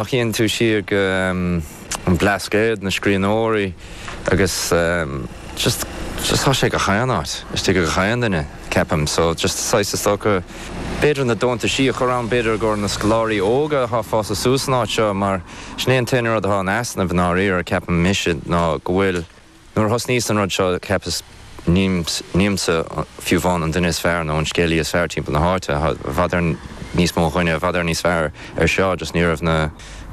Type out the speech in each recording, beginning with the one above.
Má chíonn tú siar go an Blascaod, na scríbhneoirí agus just just tá sé gach aon áit, istigh gach aon duine, ceapaim, so just saghas is dócha b'fhéidir na deontaisí a chur ann, b'fhéidir i gcomhair na scoláirí óga athá fás suas san áit seo mar sin é an t-aon rud athá in easnamh i ndáiríre, ceapaim, mise, ná go bhfuil. Nuair a thosnaíos an rud seo, cheapas, nílimse fiú amháin an duine is fearr nó an scéalaí is fearr timpeall na háite, i bhfad níos mó daoine i bhfad níos fearr ar seo just ní raibh na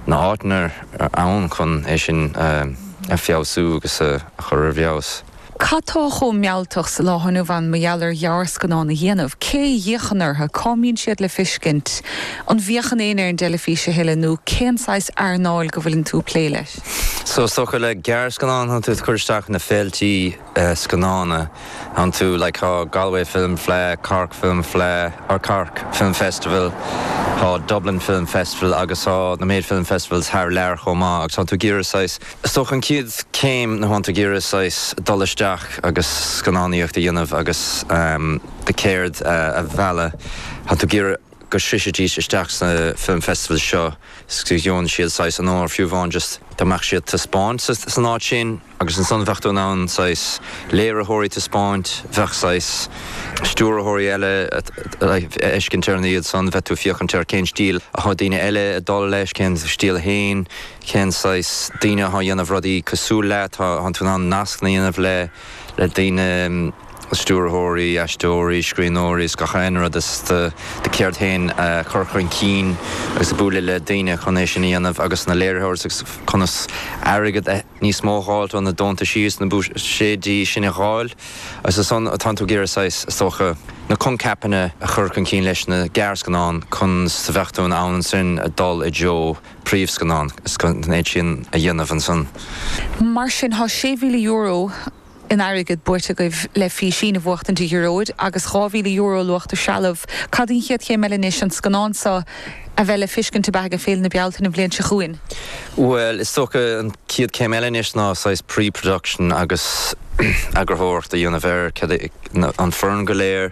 na áiteanna ann chun é sin a feabhsú agus a chur ar bhfeabhas. Cad tá chomh mealltach sa lá inniu ann mar gheall ar ghearrscannán a dhéanamh? Cé a fhéachann orthu? Cá mbíonn siad le fiscint? An bhféachann éinne ar an dteilifís a thuilleadh nó cén saghas earnáil go bhfuileann tú ag plé leis? So is dócha le gearrscannán tánn tú cur isteach na féiltí scannán tánn tú, like tá Galway Film Fleadh, Cork Film Fleadh, or Cork Film Festival, tá Dublin Film Festival agus tá na méid film festivals thar lear chomh maith agus tánn tú ag iarraidh saghas, so an chéad céim ná tánn tú ag iarraidh saghas dul isteach agus scannánaíocht a dhéanamh agus do cheird a mhealladh, tánn tú ag iarraidh. go sroichfidís isteach sna film festivals seo 's go gheobhann siad saghas onóir fiú amháin just dá mbeadh siad taispeáint san áit sin agus ansan bheadh tú in ann saghas léiritheoirí taispeáint, bheadh saghas stiúrthóirí eile a fheiscint ar an iad san, bheadh tú féachaint ar cén stíl atá daoine eile ag dul leis, cén stíl féin, cén saghas daoine atá dhéanamh rudaí cosúil leat, tánn tú in ann nascanna dhéanamh le. le daoine, stiúrthóirí, aisteoirí, scríbhneoirí is gach aon rud, is do do cheird féin a chur chun cinn agus bualadh le daoine chun é sin a dhéanamh agus na léiritheoirí agus conas airgead níos mó a dh'fháilt ó na deontaisí is na buiséidí sin a dh'fháil agus ansan tánn tú ag iarraidh saghas is dócha na coincheapanna a chur chun cinn leis na gearrscannáin conas a bheadh tú in ann ansin a dul i dtreo príomhscannán, is an méid sin a dhéanamh ansan. Mar sin, tá €6,000 in airgead buaite agaibh le Físín a bhuachtaint, a Ghearóid, agus €2,000 luach de threalamh. Cad í an chéad chéim eile anois, an scannán seo a bheith le feiscint ab ea, ag Féile na Bealtaine an bhliain seo chugainn? Bhuel, is dócha an chéad chéim eile anois ná saghas pre-production agus eagarthóireacht a dhéanamh air, an fhoireann go léir,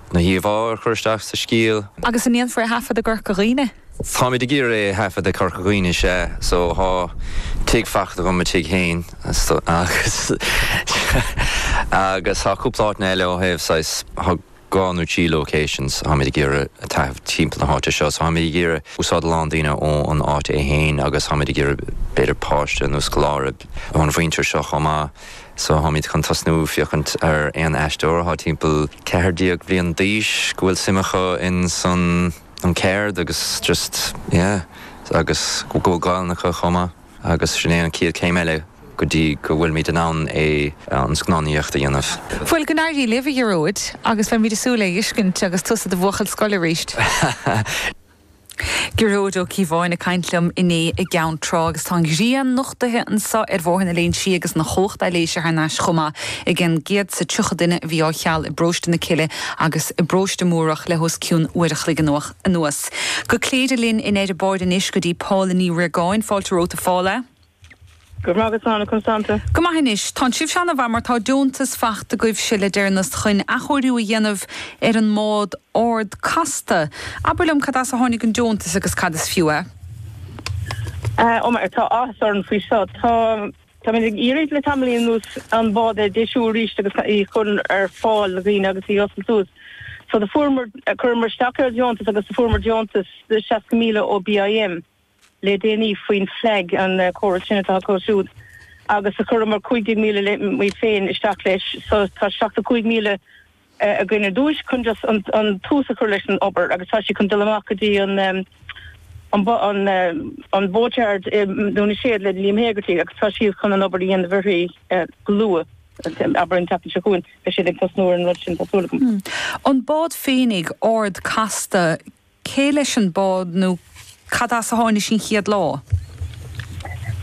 na híomhá a chur isteach sa scéal. Agus an ndéanfar é a thaifead i gCorca Dhuibhne? Táimid ag iarraidh é a thaifead i gCorca Dhuibhne, sea, so thá tigh fachta agam, mo tigh féin, so agus agus thá cúpla áiteanna eile ó thaobh saghas, thá dhá nó trí locations a tháimid ag iarraidh a thaifead timpeall na háite seo, so tháimid ag iarraidh úsáid a lán daoine ó an áit é féin agus tháimid ag iarraidh b'fhéidir páiste nó scoláire ón mhuintir seo chomh maith. So táimid chun tosnú féachaint ar aon aisteoir atá timpeall ceathair déag bliain d'aois go bhfuil suim acu in san an ceard agus just yeah agus go bhfuil Gaolainn acu chomh maith agus sin é an chéad chéim eile go dtí go bhfuilimid in ann é an scannánaíocht a dhéanamh. Bhuel, go n-éirí libh, a Ghearóid, agus beimid ag súil é a fheiscint agus tusa i do bhuachaill scoile arís. Gearóid Ó Cíobháin ag caint liom inné i gCeann Trá agus tá an ghrian nochtaithe anseo ar Bhóthar na Léinn Sí agus an chumhacht leictreachais thar n-ais chomh maith ag an gcéad is tríocha duine a bhí á cheal i bParóiste na Cille agus i bParóiste Múrach le hos cionn uair a chloig anuas. Go Cléire linn in Eirebord anois go dtí Paula Ní Riagáin. Fáilte romhat a Phaula. Go raibh maith agat. Conas tánn tú? Go maith anois. Tánn sibhse ana mhaith mar tá deontas fachta agaibhse le deireannas chuin athchóiriú a dhéanamh ar an mbád Ard Casta. Abair liom cad as a tháinig an deontas agus cad is fiú é? Ó mar tá áthas orainn faoi seo. Tá, táimid ag iarraidh le tamaillín anuas an bád a deisiú arís agus í chur ar fáil do dhaoine agus í oscailt suas. So do fuaireamar, cuireamar isteach ar dheontas agus do fuaireamar deontas de 60,000 ó BIM. le déanaí faoin FLAG, an córas sin atá acu siúd agus a chuireamar 15,000 muid féin isteach leis, so tá 75,000 againn ar dtús chun just an tús a chur leis an obair agus tá siad chun dul amach go dtí an an boatyard i nDún na Séad le Liam Hegarty agus tá siad chun an obair a dhéanamh uirthi go luath, abair an tseachtain seo chugainn beidh siad ag tosnú ar an rud sin tá súil agam. An bád féinig, Ard Casta, Cé leis an bád nó cad as a tháinig sí an chéad lá?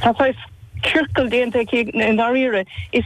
Tá saghas ciorcal déanta aici i ndáiríre. Is.